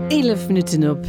Eelef Minutten op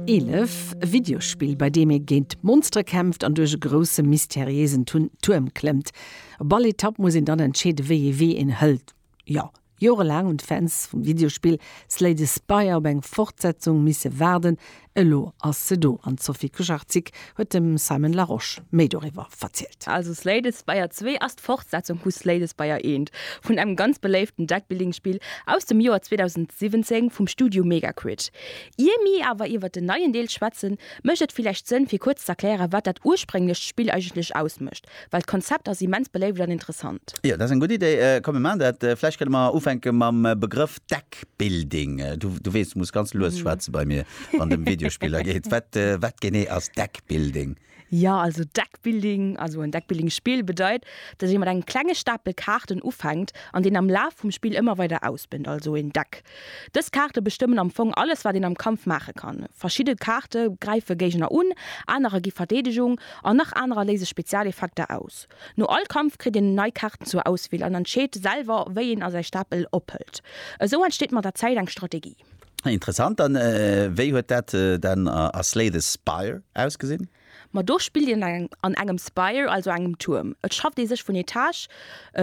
11, Videospill bei deem ee géint Monstere kämpft an duerch e grousse mysteriéisen Tuerm klëmmt. Op all Etapp muss een dann entscheeden wéi ee wee een hëlt. Jo, Jore laang hunn d'Fans vum Videospill Slay the Spire op eng Fortsetzung misse waarden, Elo ass se do an d'Sophie Kucharczyk huet dem Simon Larosche méi doriwwer verzielt. Also Slades Spire 2 ass d'Fortsetzung vu Slades Spire 1, vun engem ganz beléiften Deckbuilding-Spill aus dem Joer 2017 vum Studio Megaquid. Ier mir awer iwwert den neien Deel schwätzen, mécht et villäicht Sënn fir kuerz z'erklären, wat dat ursprénglecht Spill eigentlech ausmécht Well d'Konzept ass immens beléift an interessant. Jo, dat ass eng gutt Idee. Komm mir maachen dat. Vläicht kënne mer ufänke mam Begrëff Deckbuilding. Du weess, du muss ganz lues schwätze bei mir, wann et ëm Videospiller geet. Wat, wat genee ass Deckbuilding? Jo, also Deckbuilding, also en Deckbuilding-Spill bedeit, datt ee mat engem klenge Stapel Kaarten ufänkt an deen am Laf vum Spill ëmmer weider ausbënnt, also een Deck Dës Kaarte bestëmmen am Fong alles wat een am Kampf maache kann. Verschidde Kaarte gräife Géigner un, anerer gi Verdeedegung an nach anerer léise Spezialeffekter aus. No all Kampf kritt een nei Kaarten zur Auswiel an entscheet selwer wéi een a säi Stapel ophëlt. Esou entsteet mat der Zäit eng Strategie. Interessant. An wéi huet dat dann a Slay the Spire ausgesinn? Ma do spillt een an engem Spire, also engem Tuerm. Et schafft ee sech vun Etage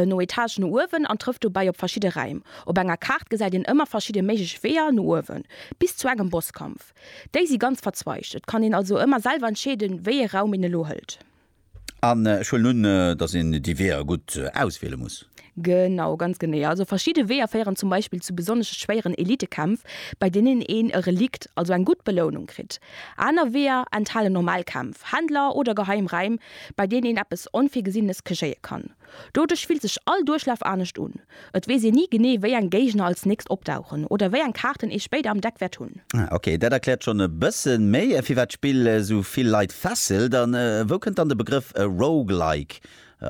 no Etage no uewen an trëfft dobäi op verschidde Räim. Op enger Kaart gesäit een ëmmer verschidde méiglech Weeër no uewen, bis zu engem Bosskampf. Déi si ganz verzweigt, et kann een also ëmmer selwer entscheeden, wéi ee Raum een elo hëlt. An ech huelen un, dass een déi Weeër gutt auswiele muss? Genau, ganz genee. Also verschidde Weeër féieren zum Beispill zu besonnesch schwéieren Elitekämpf, bei deenen een e Relikt, also eng gutt Belounung, kritt. Aner Weeër enthalen normal Kämpf, Händler oder geheim Räim, bei deenen een eppes Onvirgesinnes kegéie kann. Doduerch fillt sech all Duerchlaf anescht un. Et weess een ni genee, wéi eng Géigner als nächst opdauchen oder wéi eng Kaarten ee spéider am Deck wäert hunn. Ah, ok, dat erkläert schonn e bësse méi, firwat d'Spill esou vill Leit fesselt. A wou kënnt dann de Begrëff Roguelike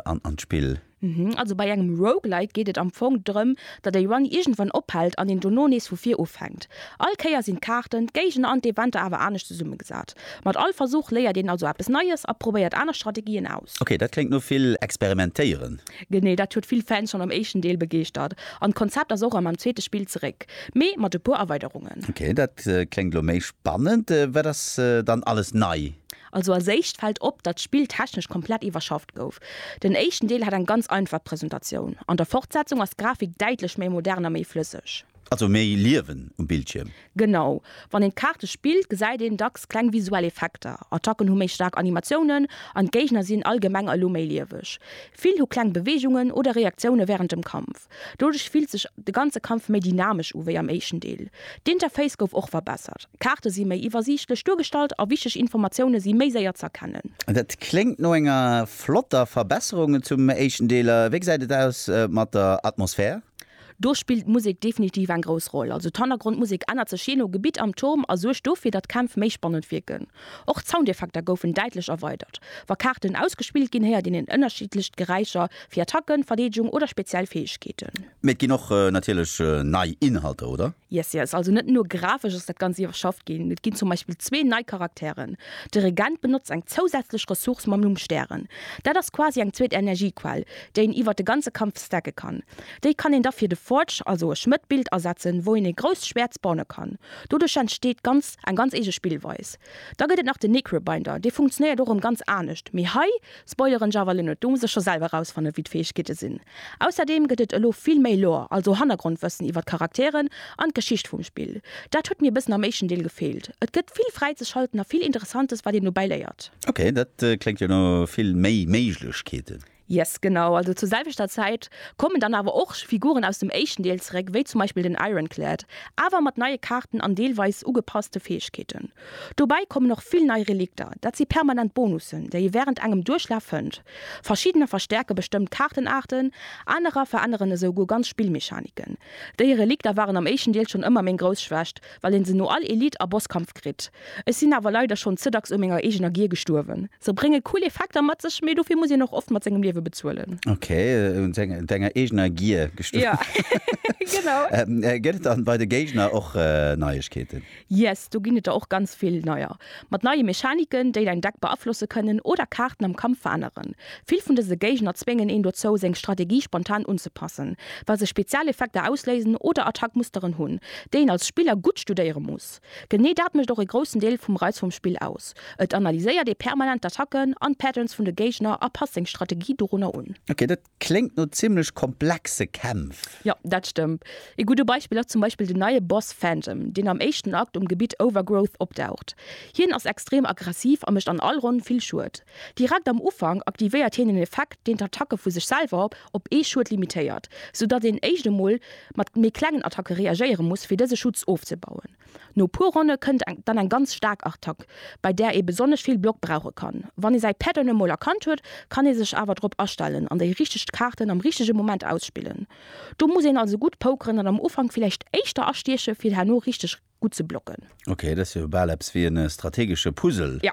an d'Spill? Mhm, also bei engem Roguelike geet et am Fong drëm, datt e Run iergendwann ophält an een dono nees vu vir ufänkt. All Kéier sinn d'Kaarten, d'Géigner an d'Eventer awer anescht zesummegesat. Mat all Versuch léiert een also eppes Neies a probéiert aner Strategien aus. Ok, dat kléngt no vill experimentéieren. Genee dat huet vill Fans schonn am éischten Deel begeeschtert an d'Konzept ass och erëm am zweete Spill zeréck, mee mat e puer Erweiderungen. Ok, dat kléngt elo méi spannend. Wat ass dann alles nei? Also als éischt fällt op, datt d'Spill technesch komplett iwwerschafft gouf. Den éischten Deel hat eng ganz einfach Presentatioun, an der Fortsetzung ass d'Grafik däitlech méi modern a méi flësseg. Also méi Liewen um Bildschierm? Genau. Wann een d'Kaarte spillt, gesäit een dacks kleng visuell Effekter. Attacken hu méi staark Animatiounen an d'Géigner sinn allgemeng elo méi lieweg. Vill hu kleng Beweegungen oder Reaktioune wärend dem Kampf. Doduerch fillt sech de ganze Kampf méi dynamesch u wéi am éischten Deel. D'Interface gouf och verbessert, Kaarte si méi iwwersiichtlech duergestallt a wichteg Informatioune si méi séier ze erkennen. Dat kléngt no enger flotter Verbesserung zum éischten Deel. A wéi gesäit et aus mat der Atmosphär? Do spillt d'Musek definitiv eng grouss Roll. Also d'Hannergrondmusek ännert sech jee no Gebitt am Turm a suergt dofir, datt d'Kämpf méi spannend wierken. Och d'Soundeffekter goufen däitlech erweidert. Wa Kaarten ausgespillt ginn, héiert een en ënnerschiddlecht Geräischer fir Attacken, Verdeedegung oder speziell Fäegkeeten. Mee et ginn och natierlech nei Inhalter, oder? Yes, yes. Also net nur grafesch ass dat Ganzt iwwerschafft ginn. Et ginn zum Beispill zwee nei Charakteren. De Regent benotzt eng zousätzlech Ressource mam Numm Stären. Dat ass quasi eng zweet Energiequell, déi een iwwert de ganze Kampf stacke kann. Déi kann een da fir de Forge, also e Schmëtt, Bild asetzen, wou een e grousst Schwäert spawne kann. Doduerch entsteet ganz. Eng ganz eege Spillweis. Da gëtt et nach den Necrobinder, dee funktionéiert och erëm ganz anescht, mee hei spoileren ech awer elo net, do muss der scho selwer erausfannen, wéi d'Fäegkeete sinn. Ausserdeem gëtt et elo vill méi Lore, also Hannergrondwëssen iwwer d'Charakteren an d'Geschicht vum Spill. Dat huet mir e bëssen am éischten Deel gefeelt. Et gëtt vill fräizeschalten a vill Interessantes, wat een dobäi léiert. Ok, dat kléngt jo no vill méi Méiglechkeeten. Yes, genau. Also zur selwechter Zäit kommen dann awer och Figuren aus dem éischten Deel zeréck, wéi zum Beispill den Ironclad, awer mat neie Kaarten an deelweis ugepasste Fäegkeeten. Dobäi kommen och vill nei Relikter, dat si permanent Bonussen, déi ee wärend engem Duerchlaf fënnt. Verschiddener verstäerke bestëmmt Kaartenaarten, anerer veränneren esou guer ganz Spillmechaniken. Déi Relikter waren am éischten Deel schonn ëmmer meng grouss Schwächt, Well een se no all Elite a Bosskampf kritt. Ech sinn awer leider schonn ze dacks u menger eegener Gier gestuerwen. Se brénge cool Effekter mat sech, mee dofir muss een och oft mat sengem Liewe bezuelen. Ok, u denger eegener Gier gestuerwen. Genau. Gëtt et dann bei de Géigner och Neiegkeeten? Yes, do ginn et der och ganz vill neier. Mat neie Mechaniken, déi däin Deck beaflosse kënnen oder Kaarten am Kampf veränneren. Vill vun dëse Géigner zwéngen een dozou, seng Strategie spontan unzepassen, well se Spezialeffekter ausléisen oder Attackmusteren hunn, déi een als Spiller gutt studéiere muss. Genee dat mécht och e groussen Deel vum Reiz vum Spill aus, et analyséiert ee permanent d'Attacken an d'Patterns vun de Géigner a passt seng Strategie dorunner un. Ok, dat Kléngt no zimlech komplexe Kämpf. Jo, dat stëmmt. Ee gudde Beispill ass zum Beispill den neie Boss Phantom, deen am éischten Akt um Gebitt Overgrowth opdaucht. Hien ass extrem aggressiv a mécht an all Ronn vill Schued. Direkt am Ufank aktivéiert hien en Effekt, deen d'Attacke vu sech selwer op ee Schued limitéiert, soudatt een éischt emol mat méi klengen Attacke reagéiere muss, fir dëse Schutz ofzebauen. No puer Ronne kënnt dann eng ganz staark Artack, bei där ee besonnesch vill Block brauche kann. Wann ee säi Päerd dann emol erkannt huet, kann ee sech awer drop astellen an déi richteg Kaarten am richtege Moment ausspillen. Do muss een also gutt pokeren an am Ufank villäicht éischter astieche fir herno richteg gutt ze blocken. Ok, dat ass jo bal eppes wéi e strategesche Puzzle. Jo,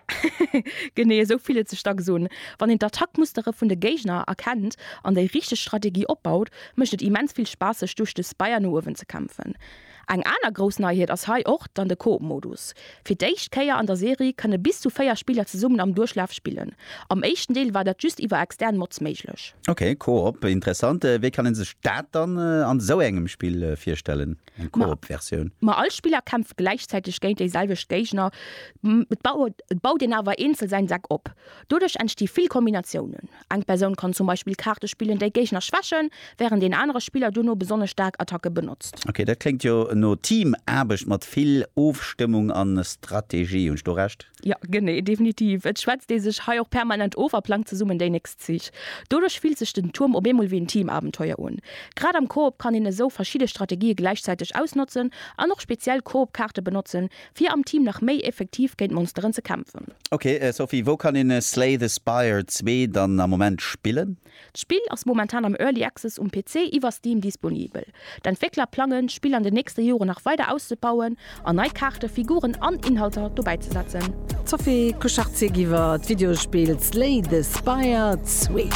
genee esou fillt et sech dacks un. Wann een d'Attackmustere vun de Géigner erkennt an déi richteg Strategie opbaut, mécht et immens vill Spaass sech duerch de Spire no uewen ze kämpfen. Eng aner grouss Neiheet ass hei och dann de Coop-Modus. Fir d'éischt Kéier an der Serie kënne bis zu 4 Spiller zesummen am Duerchlaf spillen. Am éischten Deel war dat just iwwer extern Mods méiglech. Ok, Coop, interessant. Wéi kann een sech dat dann an esou engem Spill virstellen, eng Coop-Versioun? Ma all Spiller kämpft gläichzäiteg géint déi selwecht Géigner. Et baut een awer eenzel säin Deck op. Doduerch entsti vill Kombinatiounen. Eng Persoun kann zum Beispill Kaarte spillen, déi Géigner schwächen, wärend een anere Spiller dono besonnesch staark Attacke benotzt. Ok, dat kléngt jo no Teamaarbecht mat vill Ofstëmmung an Strategie. Hunn ech do Recht? Jo, genee, definitiv. Et schwätzt ee sech hei och permanent of a plangt zesummen déi nächst Zich. Doduerch fillt sech den Tuerm op eemol wéi en Teamabenteuer un. Grad am Koop kann een esou verschidde Strategië gläichzäiteg ausnotzen an och speziell Koopkaarte benotzen, Fir am Team nach méi effektiv géint Monsteren ze kämpfen. Ok Sophie, wou kann een Slay the Spire 2 dann am Moment spillen? D'Spill ass momentan am Early Access um PC iwwer Steam disponibel. D'Entwéckler plangen, d'Spill an den nächste Joren nach weider auszebauen an nei Kaarten, Figuren an Inhalter dobäizesetzen. D'Sophie Kuchartzigiwwer d'Videospill Slay the Spire 2.